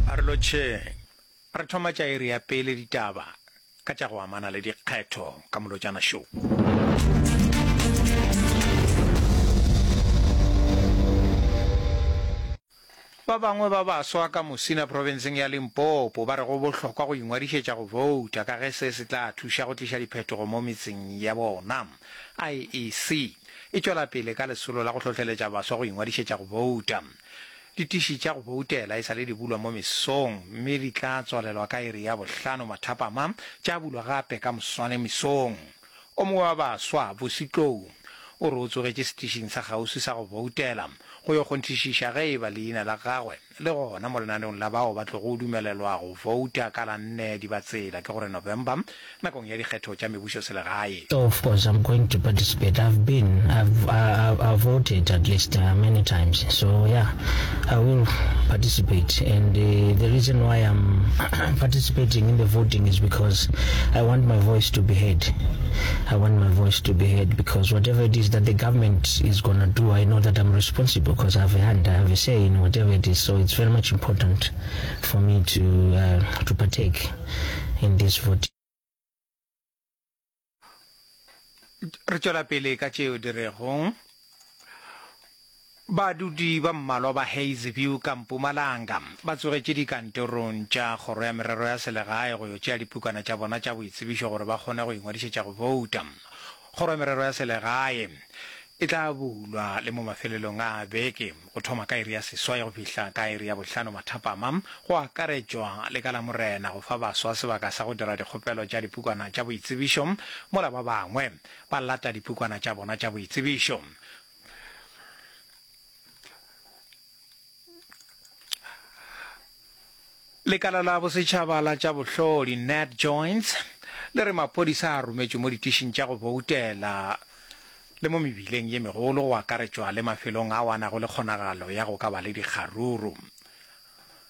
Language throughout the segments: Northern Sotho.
A re lotšheng. Re thoma tša iri ya pele ditaba ka tša go amana le dikgetho ka Molotšana Show. Ba bangwe ba baswa ka Musina profenseng ya Limpopo ba re go bohlokwa go ingwadišetša go bouta ka ge se se tla thuša go tliša diphetogo mo metseng ya bona. IEC e tšwela pele ka lesolo la go hlohleletša baswa go ingwadišetša go bouta. Ditiši tša go boutela e sa le di bulwa mo mesong mme di tla tswalelwa ka iri ya bohlano mathapama, tša bulwa gape ka moswane mesong. O mongwe wa baswa, Busi Tlou, o re o tsogetše setišing sa kgauswi sa go boutela go yo kgonthišiša ge e ba leina la gagwe Le gona mo lenaneong la bao ba tlogo dumelelwa go fouta ka la nne Dibatsela, ke gore November, nakong ya dikgetho tša mebušoselegae. Of course I'm going to participate, I've been, I've, I've voted at least many times, so yeah, I will participate and the reason why I'm participating in the voting is because I want my voice to be heard, I want my voice to be heard because whatever it is that the government She is gonna do I know that I'm responsible cause I have a hand I have a say in whatever it is so it's very much important for me to uh, to partake in this voting. re tšwela pele ka tšeo di rego badudi ba mmalwa ba hazeview ka mpumalanga ba tsogetše dikantorong tša kgoro ya merero ya selegae go yo tšea dipukana tša bona tša boitsebišo gore ba kgone go ingwadišetša go bouta Kgoro ya Merero ya Selegae e tla bulwa le mo mafelelong a beke, go thoma ka iri ya seswai go fihla ka iri ya bohlano mathapama, go akaretšwa le ka Lamorena, go fa baswa sebaka sa go dira dikgopelo tša dipukwana tša boitsebišo mola ba bangwe ba lata dipukwana tša bona tša boitsebišo. lekala la bosetšhaba la tša bohlodi nat joints le re maphodisa a rometšwe mo ditišing tša go boutela le mo mebileng ye megolo go akaretšwa le mafelong a wanago le kgonagalo ya go ka ba le dikgaruru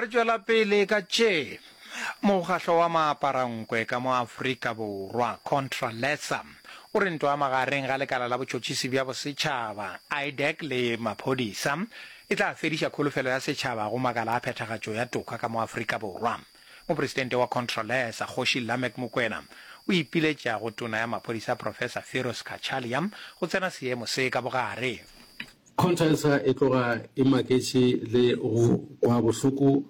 re tšwela pele ka tše mokgahlo wa maaparankwe ka mo aforika borwa contra lesa o re ntwa magareng ga lekala la botšotšisi bja bosetšhaba idec le maphodisa e tla fediša kholofelo ya setšhaba go makala a phethagatšo ya toka ka mo aforika borwa mopresidente wa contra lesa kgoši lamek mokwena o ipiletša go tona ya maphodisa professor firos kachalia go tsena seemo se ka bogare Conchisa e tloga e maketše le go kwa bohloko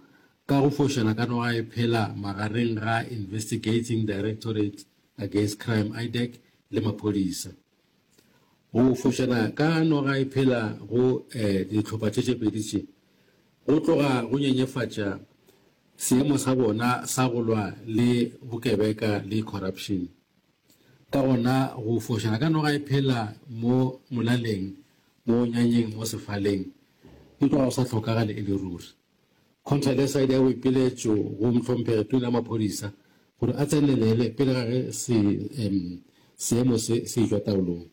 ka go fošela ka noga e phela magareng ga Investigating Directorate Against Crime, IDAC, le maphodisa. Go fošela ka noga e phela go eh, dihlopha tše tše pedi tše go tloga go nyenyefatša seemo sa bona sa go lwa le bokebeka le corruption. Ka gona go fošana ka noga e phela mo molaleng, mo nyanyeng, mo sefaleng, e tloga go sa hlokagale e le ruri. Contra le sa ile ya boipiletšo go Mhlomphegi Tona ya Maphodisa gore a tsenelele pele ga ge se, um, seemo se, se e-tšwa taolong.